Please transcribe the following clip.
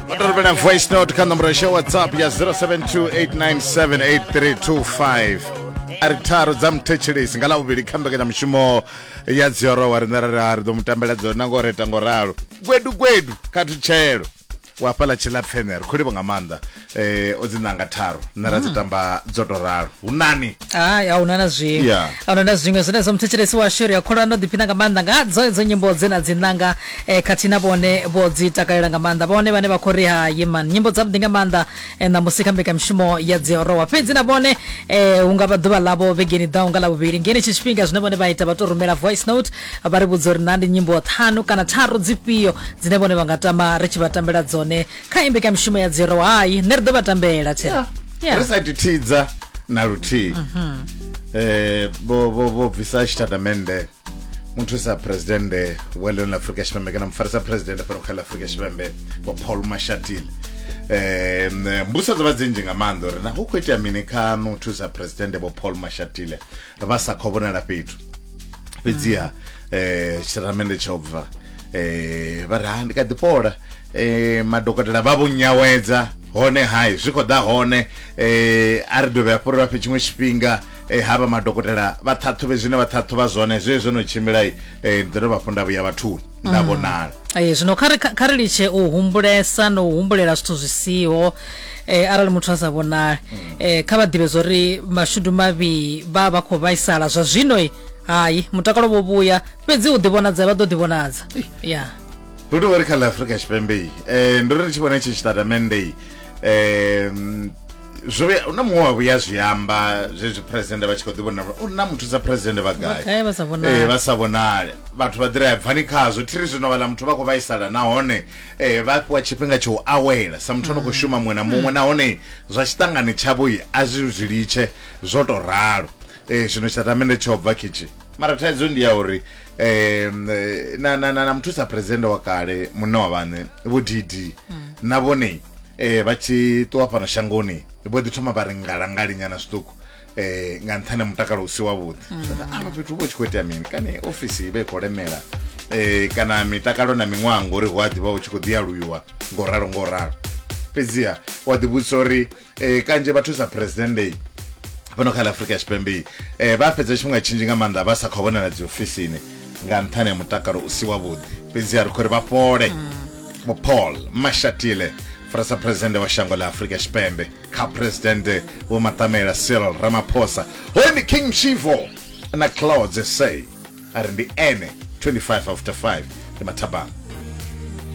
Watorobela voice note kha nomboro ya whatsapp ya 0728978325 ari tharu dza muthetshelesi nga lavhuvhili kha mbekanyamushumo ya dziorowa riṋe ra ra ri ḓo mu tambela dzona ngo reta ngo ralo gwedu gwedu kha thutshelo wa fhaḽa tshilapfene ri khou livha nga maanḓa eh o dzi nanga tharu nṋe ra dzi hmm. tamba dzo to ralo hu nani hai a huna na zwiṅwe yeah. a huna na zwiṅwe zwine zwa muthetshelesi washu ri a kholwa ndo ḓiphina nga maanḓa nga dzo dzo nyimbo dze na dzi nanga eh, khathihi na vhone vho dzi takalela nga maanḓa vhone vhane vha khou ri ha yeman nyimbo dzavhuḓi nga maanḓa eh, ṋamusi kha mbekamishumo ya dziorowa fhedzi na vhone eh, hu nga vha ḓuvha ḽavho vhegeni ḓaho nga ḽavhuvhili ngeni tshi tshifhinga zwine vhone vha ita vha tou rumela voice note vha ri vhudza uri na ndi nyimbo ṱhanu kana tharu dzifhio dzine vhone vha nga tama ri tshi vha tambela dzone kha imbekamishumo ya dziro hayi nṋe ri ḓo vha tambela tshe Yeah. Yeah. ri sa thithidza na luthihi eh vho vho vho bvisa tshitatamennde muthusa presidennde wa ḽino ḽa afurika tshipembe kana mufarisa presidennde fhano kha ḽa afurika tshipembe vho paul mashatile um mbuso dzo vha dzi nzhi nga maanḓa uri na hu khou itea mini kha muthusa presidennde vho paul mashatile vha sa khou vhonala fhethu fhedziha um eh, tshitatamende tsha u bva um vha ri ha ndi kha ḓi fhola um madokotela vha vho nyawedza hone hai zwi khou ḓa hone um a ri dovhe hafho ri vha fhe tshiṅwe tshifhinga um havha madokotela vha ṱhaṱhuvhe zwine vha ṱhaṱhuvha zwone zwe zwo no tshimbilai um ndi ḓo dovha hafho nda vhuya vhathuni nda mm. vhonala ee zwino kha kha ri litshe u humbulesa na u humbulela zwithu zwi siho eh arali muthu a sa vhonali mm. eh kha vha ḓivhe zwo ri mashudu mavhi vha vha khou vhaisala zwa zwino i hayi mutakalo vho vhuya fhedzi u ḓivhonadza vha ḓo ḓivhonadza ya hu tou ri kha la afrika tshipembe i um ndo ri ri tshi vhona tshi tshitatamende i um zwo vhuya na muṅwe wa vhuya zwi amba zwezwi president vha tshi khou ḓi vhona uri na muthu sa president vha gai Vha gai vha sa vhonali? Eh, vha sa vhonale vhathu vha ḓira ya bvani khazwo thiri zwino vhala muthu vha khou vhaisala nahone eh, vha fhiwa tshifhinga tsha u awela sa muthu ano khou shuma muṅwe na muṅwe nahone zwa tshiṱangani tshavho i a zwi zwi litshe zwo tou ralo Eh, zwino tshitamende tsho bva khitshi mara thaidzo ndi ya uri eh, na, na, na, na muthusa president wa kale munna wa vhaṋe vho dd na vhone eh vha tshi ṱuwa fhano shangoni vho ḓi thoma vha ri ngalangali nyana zwiṱuku eh nga nṱhani mutakalo usi wavhuḓi mm. avha fhethu vho tshi khou itea mini kana ofisi i vha i khou lemela eh kana mitakalo na miṅwaha ngori hu a ḓivha hu tshi khou ḓialuiwa ngo ralo ngo ralo fhedziha wa ḓivhudzisa uri eh kanzhi vha thusa president day fhano kha la afrika tshipembe eh vha fhedza tshifhinga tshinzhi nga maanḓa vha sa khou vhonala dzi ofisini nga nṱhani ha mutakalo usi wavhuḓi fhedziha ri khou ri vha fhole mm. vho paul mashatile farisa presidente wa shango la afrika tshipembe kha presidente vho matamela cyril ramaphosa hoyu ndi king mshivo na clouds sa a ri ndi ene 25 after 5 ndi mathabama